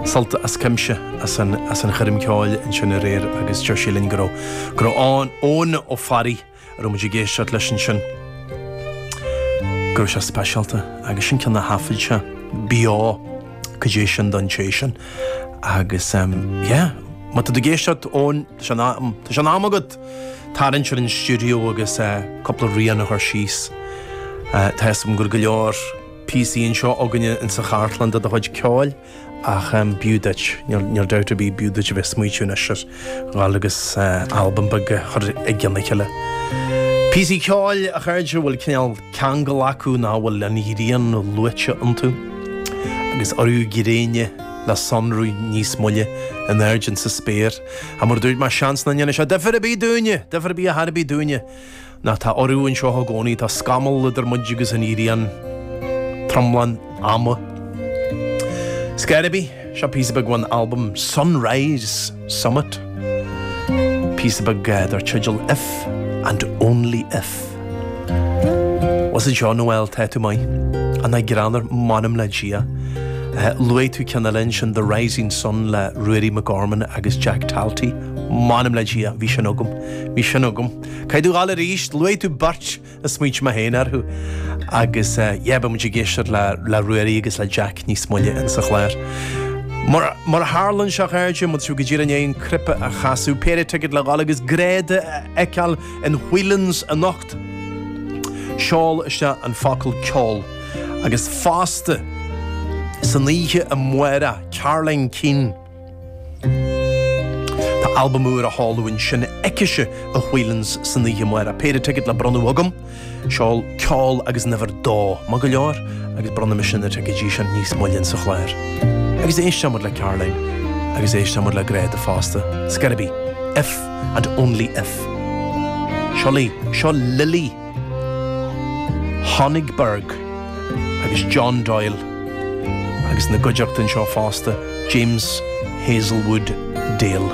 Sult as cuimse as an choirm ceoil ansin aréir agus deir sí linn go raibh go raibh ann Eoin Ó Fearraigh a raibh muid ag éisteacht leis ansin, go raibh sé speisialta agus sin ceann de na highlights ab ea Cad é sin don té sin agus yeah, má tá tú ag éisteacht Eoin, tá sé in am, tá sé in am agat tarraingt ar an stiúideo agus cúpla rian a chur síos. Tá 'fhios agam gur go leor. píosaí anseo againne insa chartlann de do chuid ceoil ach b'fhiú duit, níl dabht ar bith, b'fhiú duit a bheith ag smaoitiú anois ar dhul agus albam beag a chur i gcionn a chéile. Píosaí ceoil, a chairde, a bhfuil cineál ceangal acu nó a bhfuil an ghrian luaite iontu, agus urú gréine le sonrú níos moille in airde insa spéir. Ach mar a dúirt mé, seans nach ndéanfaidh sé difir ar bith dúinne, difir ar bith ar chor ar bith dúinne. Nó tá urú anseo i gcónaí, tá scamall idir muid agus an ghrian, tromlach an ama. 'S cár bith, seo píosa beag ón albam Sunrise Summit, píosa beag dar teideal If and Only If. Os a John, bhuel, tá tú maith. Nach greannmhar? M'anam le Dia. Luaigh tú ceann eile ansin, The Rising Sun le Ruairí Mac Gorman agus Jack Talty. M'anam le Dia, bhí sin agam, bhí sin agam. Caithfidh tú dul arís, luaigh tú beirt a smaointigh mé féin orthu agus yeah, beidh muid ag éisteacht le Ruairí agus le Jack níos moille in sa chlár. Má tharlaíonn sé a chairde, go bhfuil sibh go díreach i ndiaidh an cnaipe a chasadh, péire ticket le dhul agus Gráda a fheiceáil in Whelan's anocht. Seol isteach an focal ceol agus fosta san oíche amárach, Caroline Keane. Tá albam úr á sheoladh ansin aicise, i Whelan's san oíche amárach. Péire ticead le bronnadh agam. Seol ceol agus an uimhir dó. Maith go leor? Agus bronnfaidh mise na ticeidí sin níos moille insa chlár. Agus éisteoimid le Caroline. Agus éisteoimid le Gráda fosta. 'S cár bith. If and only if. Seo, seo Lily. Honigberg agus John Doyle agus ina gcuideachta anseo fosta, James Heazlewood-Dale.